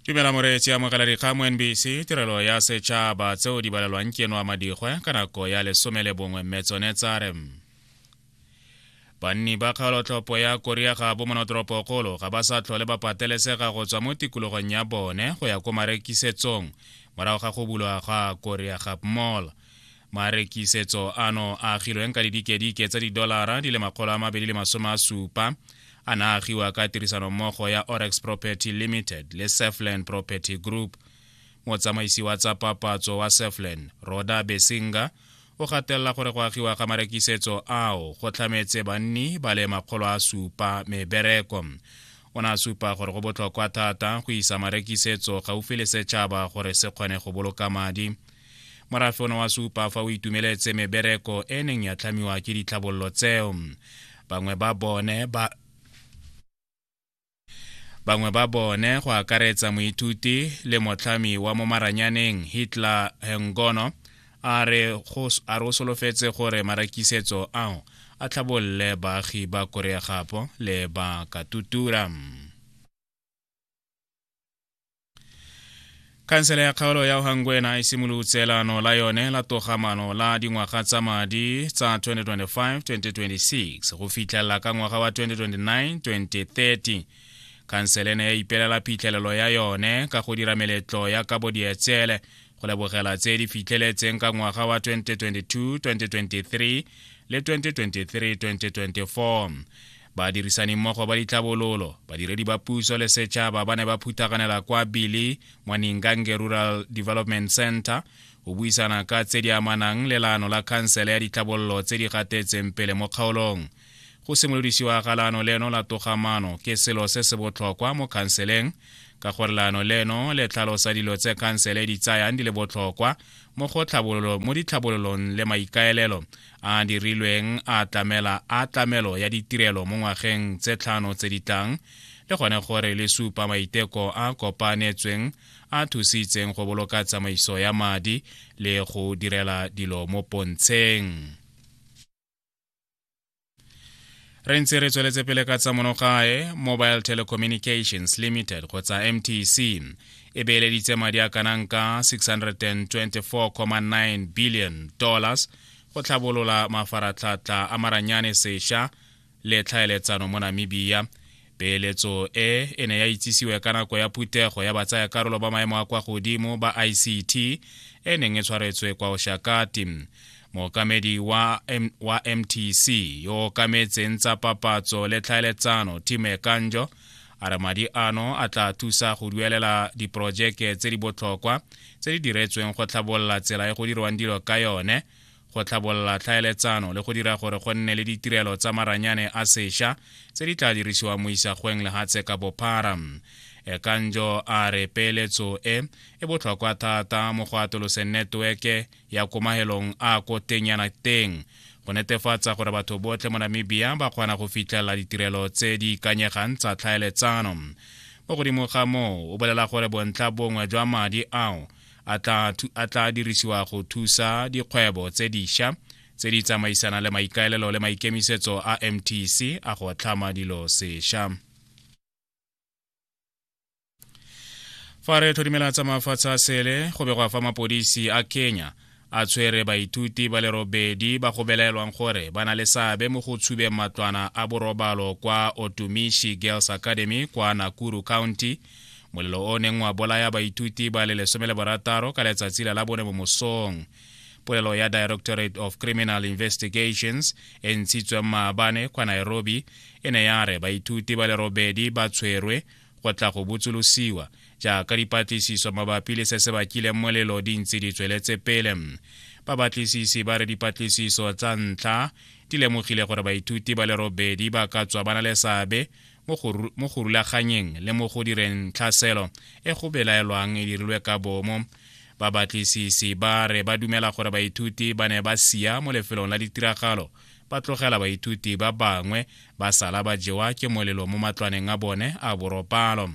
dumela moreetsi amogela dikgang mo nbc tirelo ya setšhaba tseo di balelwang ke eno a madigwe ka nako ya lesome le bongwe mme tsone tsa re banni ba kgaolotlhopho ya korea ga bo monotoropokgolo ga ba sa tlhole ba patelesega go tswa mo tikologong ya bone go ya ko marekisetsong morago ga go bulwa ga korea gap mall marekisetso ano a agilweng ka didikedike tsa didolara di le makgolo a mabedi le masome a supa a na agiwa ka tirisanommogo ya orex property limited le sefland property group motsamaisi wa tsa papatso wa sefland roda besinga o gatelela gore go agiwa ga marekisetso ao go tlhametse banni ba le makgolo a supa mebereko o ne a supa gore go botlhokwa thata go isa marekisetso gaufi le setšhaba gore se kgone go boloka madi morafe one wa supa fa o itumeletse mebereko e neng ya tlhamiwa ke ditlhabololo tseo bangwe ba bone ba bangwe ba bone go akaretsa moithuti le motlhami wa mo maranyaneng hitler hengono a re o solofetse gore marakisetso ao a tlhabolole baagi ba korea gapo le ba katutura khansele ya kgaolo ya ohangwena e simolotse laano la yone la togamano la dingwaga tsa madi tsa 2025-2026 go fitlhelela ka ngwaga wa 2029-2030 khansele ne ya ipelela phitlhelelo ya yone ka go dira meletlo ya kabo dietsele go lebogela tse di fitlheletseng ka ngwaga wa 2022-2023 le 2023-2024 Badirisanimmogo ba ditlhabololo, badiredi ba puso le setšhaba ba ne ba phuthaganela kwa Bili Mwaningange Rural Development Center go buisana ka tse di amanang le laano la khansele ya ditlhabololo tse di gatetseng pele mo kgaolong. Go simolodisiwa ga laano leno la togamano ke selo se se botlhokwa mo khanseleng ka gore laano leno le tlhalosa dilo tse khansele e di tsayang di le botlhokwa mo ditlhabololong le maikaelelo a a dirilweng a tlamela a tlamelo ya ditirelo mo ngwageng tse tlhano tse di tlang le gone gore le supa maiteko a kopanetsweng a thusitseng go boloka tsamaiso ya madi le go direla dilo mo pontsheng re ntse re tsweletse pele ka tsa monogae mobile telecommunications limited kgotsa mtc e beeleditse madi a kanang ka 624,9 billion dollars go tlhabolola mafaratlhatlha a maranyane sesha le tlhaeletsano mo namibia peeletso e e ne ya itsisiwe ka nako ya phuthego ya batsayakarolo ba maemo a kwa godimo ba ict e neng e tshwaretswe kwa oshakati mookamedi wa, M wa mtc yo o kametseng tsa papatso le tlhaeletsano time kanjo a re madi ano a tla thusa go duelela diporojeke tse di botlhokwa tse di diretsweng go tlhabolola tsela e go dirwang dilo ka yone go tlhabolola tlhaeletsano le go dira gore go nne le ditirelo tsa maranyane a sesha tse di tla dirisiwang mo isagweng lehatshe ka bophara ekanjo a re peeletso e e botlhokwa thata mo go atoloseng neteweke ya komahelong a ko teng yana teng go netefatsa gore batho botlhe mo namibia ba kgona go fitlhelela ditirelo tse di ikanyegang tsa tlhaeletsano mo godimo ga moo o bolela gore bontlha bongwe jwa madi ao a tla dirisiwa go thusa dikgwebo tse diša tse di tsamaisanang le maikaelelo le maikemisetso a mtc a go tlhama dilo seša fa re tlhodimela tsa mafatshe a sele go begwa fa mapodisi a kenya a tshwere baithuti ba le robedi ba go belaelwang gore ba na le seabe mo go tshubeng matlwana a borobalo kwa otumishi girls academy kwa nakuru county molelo o neng wa bolaya baithuti ba le lesome le borataro ka letsatsi la labone mo mosong polelo ya directorate of criminal investigations e ntshitsweng maabane kwa nairobi e ne ya re baithuti ba le robedi ba tshwerwe go tla go botsolosiwa jaaka dipatlisiso mabapi le se se bakileng molelo di ntse di tsweletse pele babatlisisi ba re dipatlisiso tsa ntlha di lemogile gore baithuti ba le robedi ba ka tswa ba na le seabe mo go rulaganyeng le mo go direng tlhaselo e go belaelwang e dirilwe ka bomo babatlisisi ba re ba dumela gore baithuti ba ne ba sia mo lefelong la ditiragalo ba tlogela baithuti ba bangwe ba sala ba jewa ke molelo mo matlwaneng a bone a boropalo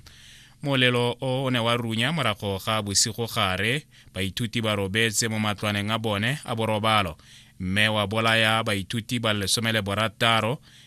molelo o ne wa runya morago ga bosigo gare baithuti ba robetse mo matlwaneng a bone a borobalo mme wa bolaya baithuti ba lesome le borataro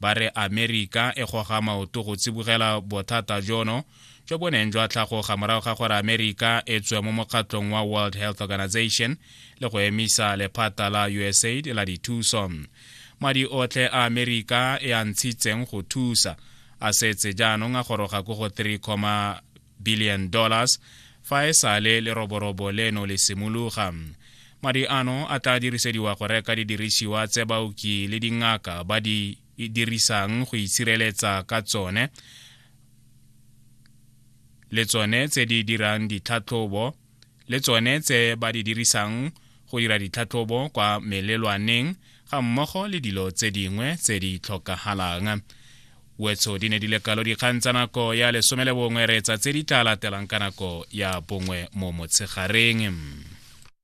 Ba re Amerika e goga maoto go tsibogela bothata jono jo bo neng jwa tlhagoga morago ga gore Amerika e tswe mo mokgatlong wa World Health Organization le go emisa lephata la USAID la dithuso. Madi otlhe a Amerika e a ntshitseng go thusa a setse jaanong a goroga ko go 3, billion dollars fa e sale leroborobo leno le simologa madi ano a tla dirisediwa go reka didirisiwa tse baoki le dingaka ba di dirisang go itshireletsa ka tsone le tsone tse di dirang ditlhatlhobo le tsone tse ba di dirisang go dira ditlhatlhobo kwa melelwaneng ga mmogo le dilo tse dingwe tse di tlhokagalang wetso di ne di le kalo dikgang tsa nako ya lesome le bongwe reetsa tse di tla latelang ka nako ya bongwe mo motshegareng